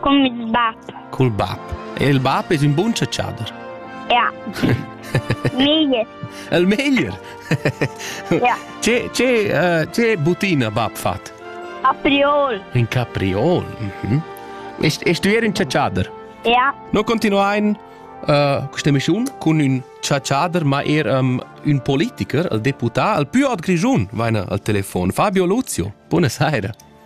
Cun ils bab. Cul bab. E il bab es ün bun chatschader. Ja. Meglier. El meglier. ja. Che, che, uh, che butina bab fat? Capriol. In capriol. Mhm. Est, est tu er un chatschader? Ja. No continuain uh, questa emissione con un chatschader, ma er um, un politiker, il deputà, il più ad Grigiun, vaina al telefono, Fabio Luzio. Buonasera.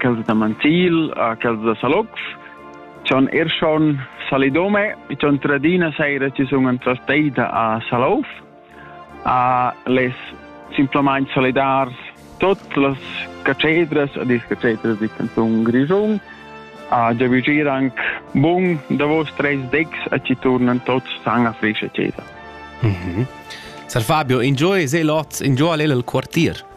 quels da Manzil, quels da Salox, son er schon Salidome, son tradina saira ci sun entrasteita a Salouf, a les simplamain solidars tot las cacedras, ad is cacedras di canzun Grischun, a giavigier anc bun davos treis decs a ci turnan tots san a frischa cesa. Mm -hmm. Sar Fabio, enjoy se lot, enjoy al el quartier.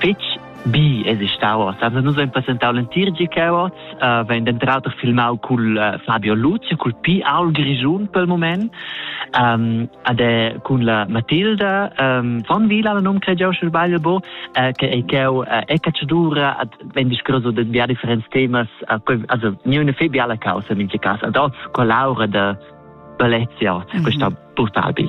fitg bi es il Star Wars. Also nus hain presentau l'entir GK Awards, uh, vegn denter auter filmau cul uh, Fabio Luzia, cul Pi Aul Grischun pel moment, um, ad è cun la Matilda um, von Vila, la nom crediau sche sbagl bo, uh, che ei cheu uh, e cacciadura ad vegn discurso de via differents temas, uh, also niune fe biala causa in cas, ad oz collaura de bellezia, mm -hmm. questa brutal bi.